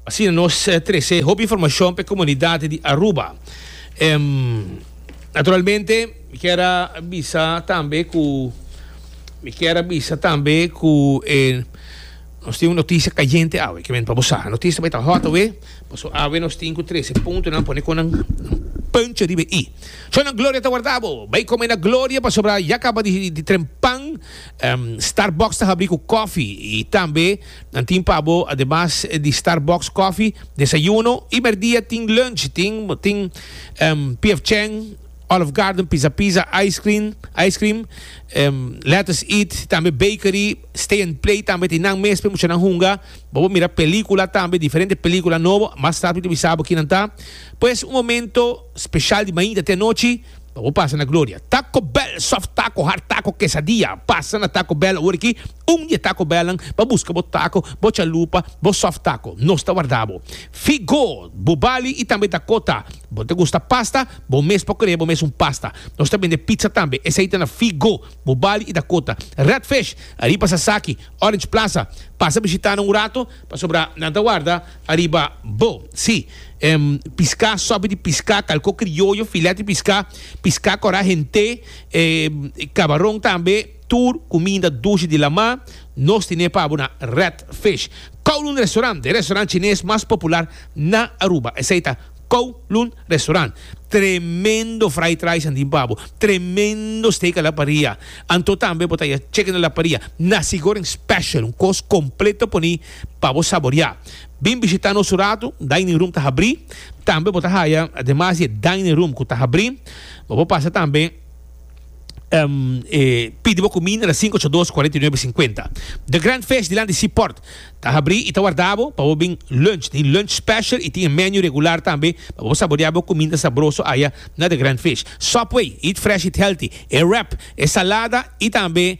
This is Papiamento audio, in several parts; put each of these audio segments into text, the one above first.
Asina nos trece hopi informacion pe comunidad di Aruba. Naturalmente mi kier a bisa tambe cu mi kier a bisa tambe cu e nos tin un noticia cayente awe kier mi ta bosa noticia bay ta hot awe paso awe nos tin cu trece punto nan pone con nan punch riba e i. So nan gloria ta warda bo bay come na gloria pasobra ya caba di trempan Starbucks ta habri cu coffee y tambe Nan tin pa bo ademas di Starbucks coffee, desayuno y merdia tin lunch, tin tin PF Chang, Olive Garden pizza pizza, ice cream, ice cream, lettuce eat, tambe bakery, stay and play tambe tin nan mes pe muchanan hunga, bo bo mira pelicula tambe diferente pelicula nobo, mas tarde bo ta bisa bo kinan ta, pues un momento special di mainta te anochi. Pa bo pasa na gloria. Taco Bell soft taco, hard taco, quesadilla. Pasa na Taco Bell awor aki, un di e Taco Bellnan pa buska bo taco, bo chalupa, bo soft taco. Nos ta warda bo. Figo, bubali i tambe dakota. Bo ta gusta pasta? Bo mes por krea bo mes un pasta. Nos ta bende pizza tambe. Esei ta na Figo, bubali i dakota. Red Fish, ariba Sasaki, Orange Plaza. Pasa bishitana un rato pasobra nan ta warda. Ariba bo, si. Em, piská, sòpi di piská, kalko krioyo, filèt di piská, piská kòrá, hent'é, em, kabaron tambe, tur kuminda dushi di lamá, nos tine pa bo na Red Fish Kowloon Restaurant, e restaurant chines mas popular na Aruba, esei ta Kowloon Restaurant. Tremendo fried rice nan tin pa bo, tremendo steak a la paria, anto tambe bo ta ya chicken a la paria, nasi goreng special, un kos kompleto por mi. pa bo saboria. Bin bishita nos un ratu, dining room ta habri, tambe bo ta haya ademas di e dining room cu ta habri, bo por pasa tambe e pidi bo cuminda na sinku ocho dos cuarenta y nuebe cincuenta. The Grand Fish dilanti Sea Port ta habri y ta warda bo pa bo bin lunch. Tin lunch special y tin e menu regular tambe pa bo saboria bo cuminda sabroso aya na The Grand Fish. Subway, eat fresh, eat healthy, e wrap, e salada y tambe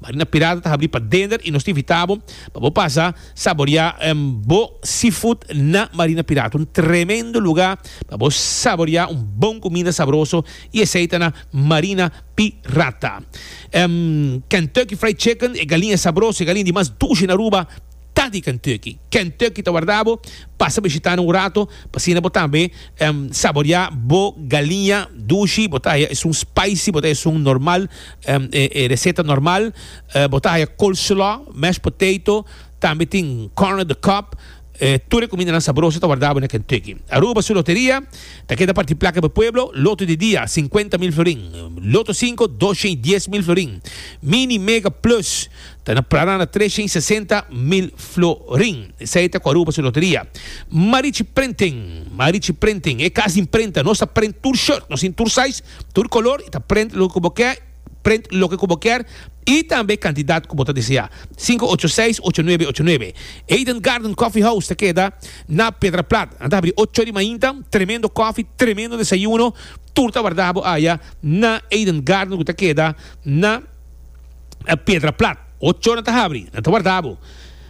Marina Pirata ta habri pa dender y nos ta invita bo pa bo pasa saboria bo seafood na Marina Pirata. Un tremendo lugar pa bo saboria un bon cuminda sabroso y esey ta na Marina Pirata. Kentucky Fried Chicken e galiña sabroso, e galiña di mas dushi na Aruba. Ta di Kentucky. Kentucky ta warda bo. Pasa bishitana un rato pa asina bo tambe saborea bo galiña dushi. Bo ta haya esun spicy, bo ta haya esun normal, e reseta normal. Bo ta haya coleslaw, mashed potato, tambe tin corn on the cob. Tur e kumindanan sabroso ta warda bo na Kentucky. Aruba su loteria ta keda parti plaka pa e pueblo. Loto di dia, sinkuenta mil florin. Loto sinko, dosha i dies mil florin. Mini, mega, plus. Ta na prada na tres shen sesenta mil florin. Esei ta cu Aruba su loteria. Marichi Printing, Marichi Printing, e cas di imprenta. Nos ta print tur shirt, nos tin tur size, tur color y ta print loke cu bo kier, print loke cu bo kier y tambe cantidad cu bo ta desea. Cinco ocho seis ocho nuebe ocho nuebe. Eden Garden Coffee House ta keda na Pedraplat. Nan ta habri ocho di mainta. Tremendo coffee, tremendo desayuno. Tur ta warda bo aya na Eden Garden cu ta keda na. e pedra plat. Ocho na ta habri, na ta warda bo.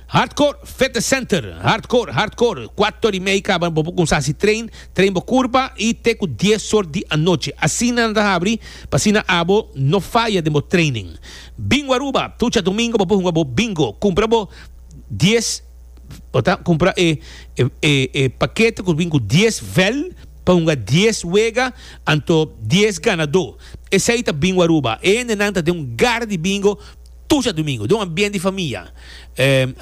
Hardcore Fitness Center, Hardcore, Hardcore, kuato ora i mei kaba bo por kumsa hasi train, train bo kurpa i te ku dies sor di anochi. Asina na ta habri pa asina abo no faya den bo training. Bingo Aruba, tucha domingo bo por hunga bo bingo. Kumpra bo dies. bo ta kumpra e e pakete ku bin ku dies vèl pa hunga dies wega anto dies ganadó. Esei ta Bingo Aruba. E hende nan ta den un gar di bingo tur sètdumingu, den un ambiente di famia.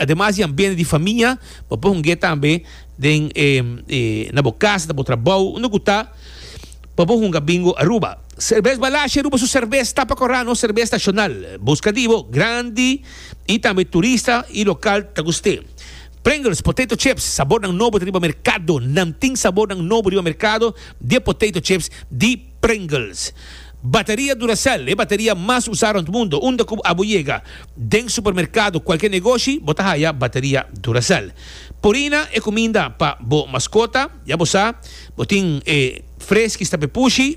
Ademas di ambiente di famia bo por hungu'é tambe den e e na bo kas, na bo trabou, unda ku ta pa bo hunga Bingo Aruba. Serbes Balashi Aruba su serbes tapa korá, nos serbes nashonal. Buska di bo grandi. y tambe turista y local ta gust'é. Pringles potato chips sabornan nobo ta riba mercado, nan tin sabornan nobo riba mercado di e potato chips di Pringles. Bateria Duracell, e bateria mas usa rond mundo, unda cu abo yega den supermercado, cualkier negoshi bo ta haya bateria Duracell. Purina e cuminda pa bo mascota, ya bo sa bo tin e fresky stap'e pushi,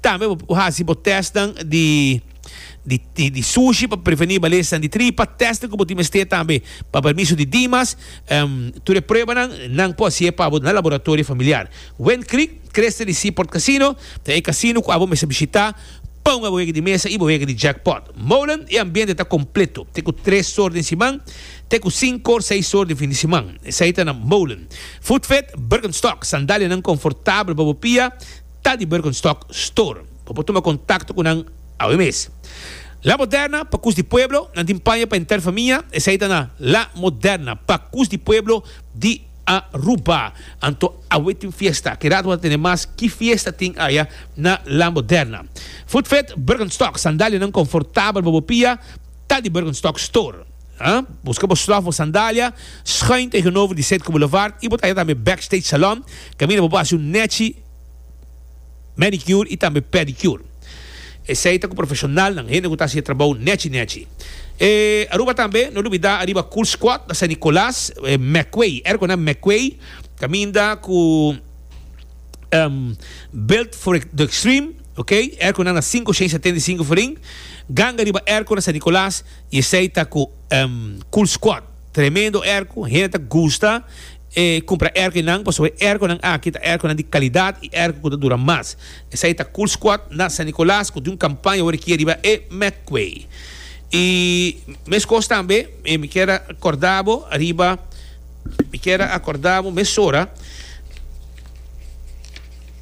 Tambe bo por hasi bo testnan di di sushi pa preveni balesnan di tripa. Testnan ku bo tin mester tambe pa permiso di Dimas. Tur e pruebanan nan por hasié pa bo na laboratorio familiar. Wind Creek, Cresta di Seaport Casino, ta e casino ku abo mester bishitá pa un abohega di mesa i bohega di jackpot. Molen, E ambiente ta kompleto, te ku tres sor den siman te ku sinko or seis sor den fin di siman. Esei ta na Molen. Food Fit, Birkenstock, sandalianan konfortabel pa bo pia. Ta di Birkenstock Store. Bo por tuma kontakto ku nan awe mes. La Moderna, pa Kus di Pueblo, Nan tin paña pa henter famia, esei ta na La Moderna, pa Kus di Pueblo di Aruba. Anto awe tin fiesta. Ke rato bo ta tene mas ki fiesta tin aya na La Moderna. Footfit Birkenstock, Sandalianan konfortabel pa bo pia, ta di Birkenstock Store. Buska bo slòf, bo sandalia, schuin tegenover di Zuidkoebelouvard i bo ta aya tambe Backstage Salon, kaminda bo por hasi un nèchi. manicure y tambe pedicure. Esey ta cu profesionalnan, hende cu ta haci e trabou nechi nechi. E Aruba tambe, no lubida ariba Cool Squad na San Nicolas, Meckway, ergo na Meckway, caminda cu Built for the Extreme, ok, ergo nan na cinco cien setenta y cinco Ferin, ganga riba ergo na San Nicolas y esey ta cu Cool Squad, tremendo ergo, hende ta gusta. E cumpra erco enan pasobra e erconan aki ta erconan di calidad y erco cu ta dura mas. Esai ta Cool Squad na San Nicolas cu tin un campaña awor aki riba e Medway. Y mescos tambe mi kier a corda bo riba, mi kier a corda bo mesora,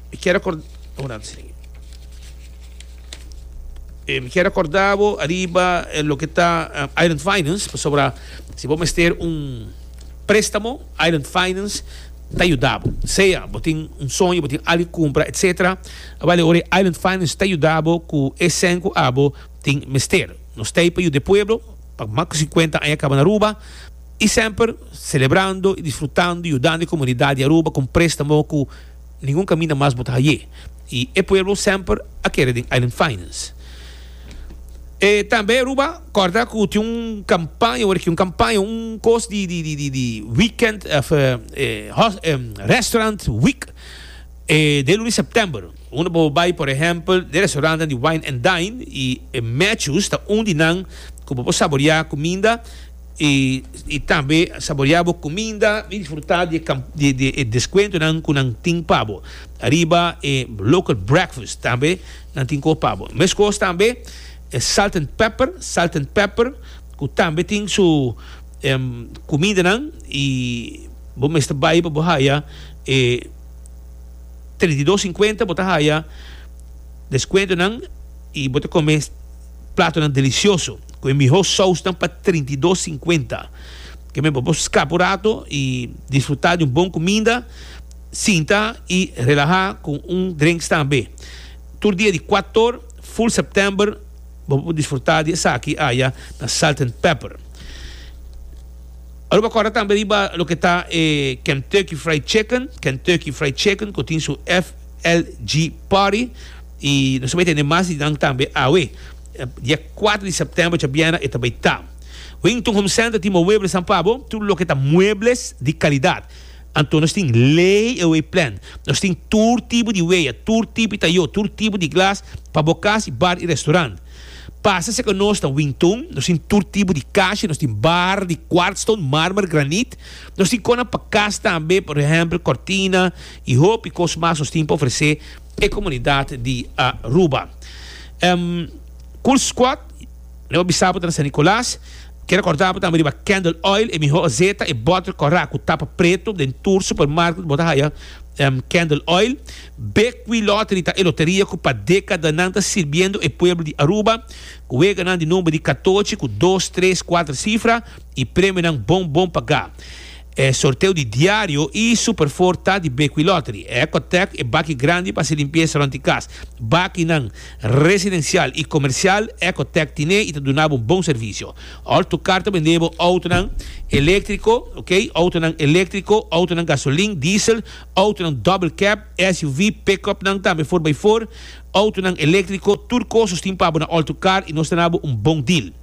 mi kier a corda, obrando sin aki, e mi kier a corda bo riba loke ta Island Finance pasobra si bo mester un. Préstamo, Island Finance ta yuda bo. Sea bo tin un soño, bo tin algu di kumpra, etc. Aba le ora ei Island Finance ta yuda bo ku e sèn ku abo tin mester. Nos ta ei pa yuda e pueblo pa mas ku sinkuenta aña kaba na Aruba i semper selebrando i disfrutando yudando e komunidat di Aruba kon préstamo ku Ningun kaminda mas bo ta haye. Y e pueblo semper a kere den Island Finance. E tambe Aruba corda cu tin un campaña, word aki, un campaña, un cos di di di di weekend of restaurant week den lunes September. Unda bo bay por ehempel den restaurantenan di Wine and Dine y Matthews ta un di nan cu bo por saborea cuminda. y tambe saborea bo cuminda y disfruta di di e descuentonan cu nan tin pa bo ariba e local breakfast tambe nan tin cu pa bo mescos tambe e salt and pepper salt and pepper cu tambe tin su cumindanan y bo mester bay pa bo haya e treinta y dos cincuenta bo ta haya descuentonan y bo ta come platonan delicioso cu e miho sausnan pa trinta i dos cincuenta. Ke men pa bo scapa un rato y disfruta di un bon cuminda, sinta y relaha cu un drinks tambe. Tur dia di cuator, full September, bo por disfruta di esaki aya na Salt and Pepper. Aruba corda tambe riba loke ta e Kentucky Fried Chicken, Kentucky Fried Chicken, cu tin su FLG Party I nos ta bai tende mas di nan tambe awe. Dia kuater di sèptèmber ocha bièrnè e ta bai ta. Wington Home Center tin mowebles nan pa bo, tur loke ta muebles di kalidat. Anto nos tin lay-away plan. Nos tin tur tipo di weya, tur tipo di tayó, tur tipo di glas pa bo kas i bar i restaurant. Pasa serka nos na Wington. Nos tin tur tipo di kasha. Nos tin bar di kwartstone, marmer, granit. Nos tin kosnan pa kas tambe, por ehèmpel kòrtina i hopi kos mas nos tin pa ofresé. e comunidad di Aruba. Cool Squad lo a bisa bo ta na San Nicolas. Ke recorda bo tambe riba Candle Oil, e miho azeta, e bottle corra cu tapa preto. Den tur supermarket bo ta haya Candle Oil. Bequi Lottery ta e loteria cu pa decadanan ta sirbiendo e pueblo di Aruba cu weganan di number di catochi cu dos, tres, cuater cifra y premionan bon bon paga. E sorteo di diario y super four ta di Bequi Lottery. E Ecotech e baki grandi pa haci limpieza rond di cas. Bakinan, residencial y comercial, Ecotech tine y ta duna bo bon servicio. All to car ta bende bo autonan electrico, ok, autonan electrico, autonan gasolin, diesel, autonan double cab, SUV, pick-upnan tambe four by four, autonan electrico, tur cosas tin pa bo na All to Car y nos ta na bo un bon deal.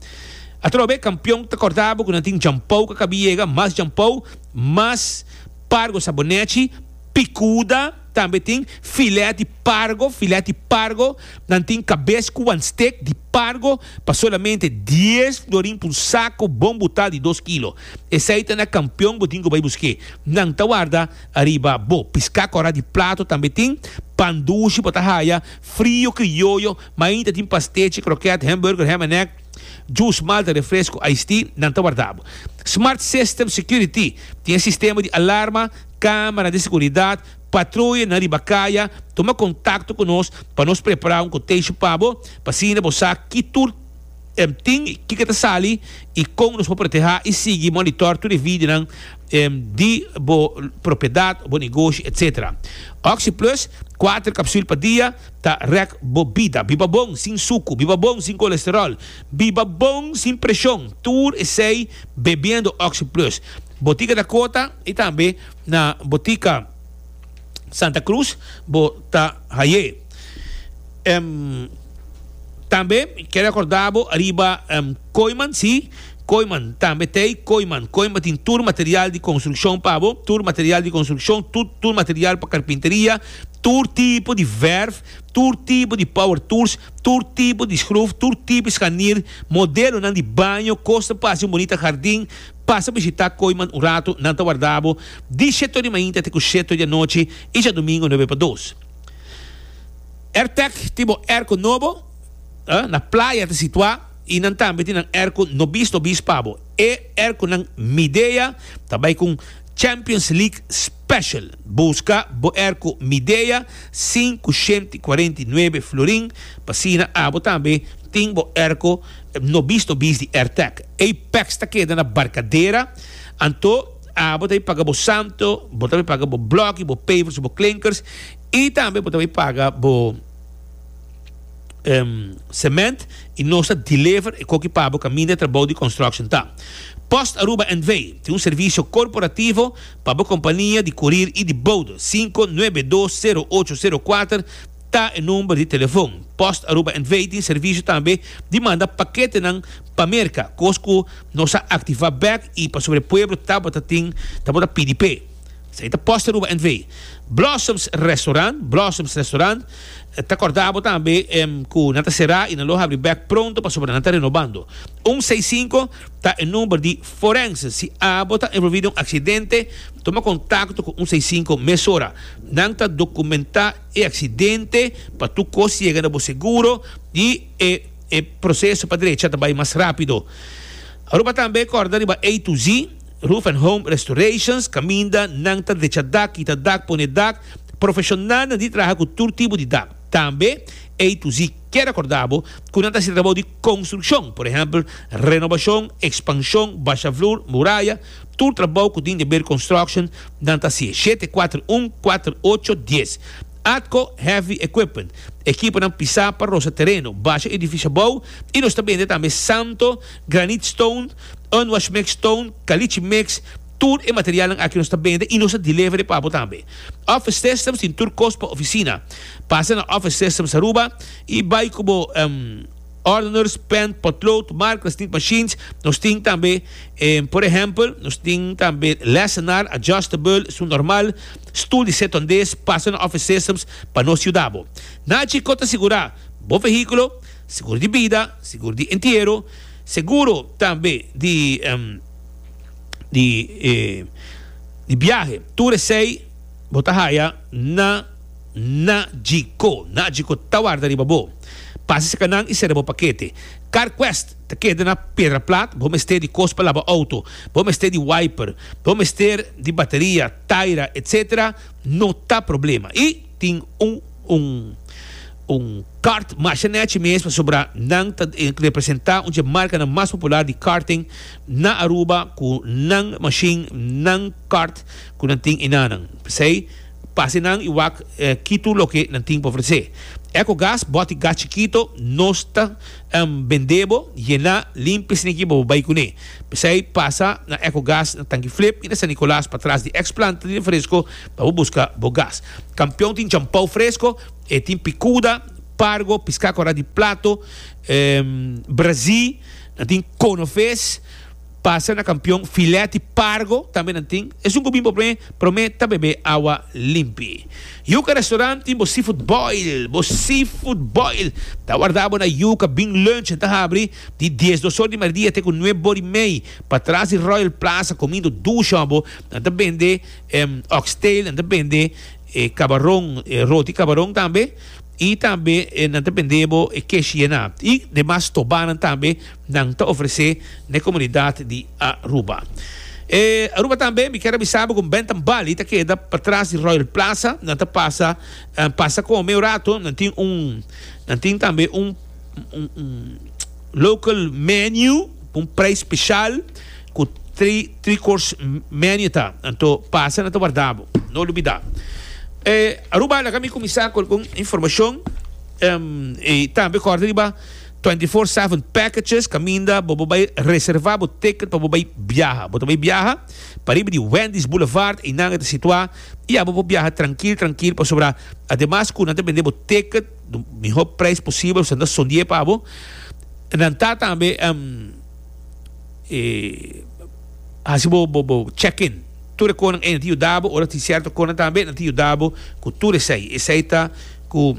Atrobe kampion ta kòrtá bo ku nan tin djampou ku a kabí yega, mas djampou, mas pargo sa bo nèchi, pikuda, tambe tin filèt di pargo, filèt di pargo, nan tin kabes ku wan stek di pargo pa solamente dies florin pa un sako bon butal di dos kilo. Esei ta na kampion bo tin ku bai busk'é. Nan ta warda ariba bo. Piská kòrá di plato tambe tin, pan dushi bo ta haya, frio krioyo, Main ta tin pastechi, krokèt, hèmburger, hèm en èk, jus, malta, refresku, ice tea, nan ta warda bo. Smart System Security tin e sistema di alarma, kámara di seguridat, patroye nan riba kaya, tuma kontakto ku nos pa nos prepara un koteshi pa bo, pa asina bo sa ki tur tin i kiko ta sali i kon nos por protehá i sigui monitòr tur e vidinan di bo propiedat, bo negoshi, etcétera. Oxi Plus, kuater kapsùl pa dia. Ta rèk bo bida. Biba bon sin suku. Biba bon sin kolesteròl. Biba bon sin preshon. Tur esei bebiendo Oxi Plus. Botika Dakota i tambe na Botika Santa Cruz bo ta hai'é. Tambe ke rekordá bo ariba Koiman, sí, Koiman tambe t'ei Koiman. Koiman tin tur material di konstrukshon pa bo. Tur material di konstrukshon, tur material pa karpinteria. tur tipo di verf, tur tipo di power tools, tur tipo di schruf, tur tipo di scharnier, modelonan di baño, cos ta pasa un bonita hardin, pasa bishita Kooiman un rato, nan ta warda bo di sheto di mainta te cu sheto di anochi y djadomingo nuebe pa dos. Airtec tin bo airco nobo, na playa ta situa y nan tambe tin nan airco nobis nobis pa bo. E airconan Midea ta bay cu un Champions League. Special, Busca bo erco Midea sin cu shenti cuarenta y nuebe florin p'asina abo tambe tin bo erco no bis no bis di Airtech. Ey peks ta keda na Barcadera, anto abo ta bay paga bo santo, bo ta bay paga bo bloki, bo pavers y bo klinkers y tambe bo ta bay paga bo cement y nos ta deliver e coki pabo caminda e trabao di construction ta. Post Aruba N.V. tin un servicio corporativo. Pa bo kompania di kurir i di bouda, sinku nuebe dos sero ocho sero kuater ta e number di telefon. Post Aruba NV. tin servisio tambe di manda paketenan pa Merka, kos ku nos a aktivá bèk i pasobra e pueblo tabata tin tabata pidi p'e. Esei ta Post Aruba NV. Blossoms Restaurant, Blossoms Restaurant, ta kòrdá bo tambe ku nan ta será i nan lo habri bèk pronto pasobra nan ta renobando. Un seis sinku. ta e number di Forense. Si abo ta envolvi den un accidente, toma contacto cu un seis cinco mesora. Nan ta documenta e accidente pa tur cos yega na bo seguro y e e proceso pa derecha ta bay mas rapido. Aruba tambe corda riba A to Z Roof and Home Restorations caminda nan ta decha dak, kita dak, pone dak. Profesionalnan di traha cu tur tipo di dak. Tambe A to Z kier a corda bo cu nan ta hasi trabao di. Konstrukshon, por ehèmpel, renobashon, ekspanshon, basha flur, muraya, tur trabou ku tin Debeer Construction nan ta hasié, shete kuater un kuater ocho dies. Atco Heavy Equipment, ekiponan pisá pa rosa tereno, basha edifisio abou i nos ta bende tambe santo, granit stone, unwashmex stone, kalichi mex, tur e materialnan aki nos ta bende i nos ta deliver e pa bo tambe. Office Systems tin tur kos pa ofisina. Pasa na Office Systems Aruba. I bai ku bo ordeners, pen, potlood, markers, snitt machines. Nos tin tambe, por ehempel, nos tin tambe lesenar, adjustable, su normal, stul di set ondes, pasa na office systems pa nos yuda bo. Naci ko ta sigura bo vehíkulo, seguro di bida, seguro di entiero, seguro tambe di di biahe, tur esei bo ta haya na. Na Djiko, Na Djiko ta warda riba bo. Pasa cerca nan y cera bo paquete. Carquest ta keda na Pedra Plat, bo mester di cos pa laba auto, bo mester di wiper, bo mester di bateria, taira, etc. No ta problema. Y tin un un un kart masha nechi mes pasobra nan ta representa un dje marcanan mas popular di karting na Aruba cu nan machine, nan kart cu nan tin y nanan. P'esey. pa hasi nan i wak kitu loke nan tin pa ofresé. Ecogas boti gas chikito, nos ta bendé bo, yená, limpia si nikiba bo bai kuné. P'esei pasa na Ecogas na Tanki Flip i na San Nicolas patras di eks planta di refresko pa bo buska bo gas. Kampion tin champou fresko, e tin pikuda, pargo, piská korá di plato, brazí, nan tin kono ves. Pasa na kampion filèt i pargo tambe nan tin. Esun ku bin bo promé, promé ta bebé awa limpi. Yuka Restaurant tin bo seafood boil. Bo seafood boil ta wardá bo na Yuka Bin Lunch en ta habri di dies dos or di mardia te ku nueb or i mei pa tras di Royal Plaza komindo dusha bo. Nan ta bende oxtail, nan ta bende kabaron, roti kabaron tambe i tambe nan ta bende bo e kesh yenat i demas stobanan tambe. nan ta ofresé na e komunidat di Aruba. E Aruba tambe mi kier a bisa bo ku Bentham Bali ta keda patras di Royal Plaza, nan ta pasa pasa kome un rato, nan tin un nan tin tambe un un local menu un prijs speshal ku tri tri kors menu ta, anto pasa nan ta warda bo no lubida. E Aruba laga mi kuminsá ku algun informashon i tambe kòrda riba. Twenty four seven packages caminda bo bo bay reserva bo ticket pa bo bay biaha. Bo ta bay biaha pariba di Wendy's Boulevard eynan e ta situa y ya bo por biaha trankil trankil pasobra ademas cu nan ta bende bo ticket den mihor prijs posibel esnan ta sondié pa bo nan ta tambe haci bo bo bo check in tur e conan ey nan ta yuda bo ora tin cierto conan tambe nan ta yuda bo cu tur esey. Esey ta cu.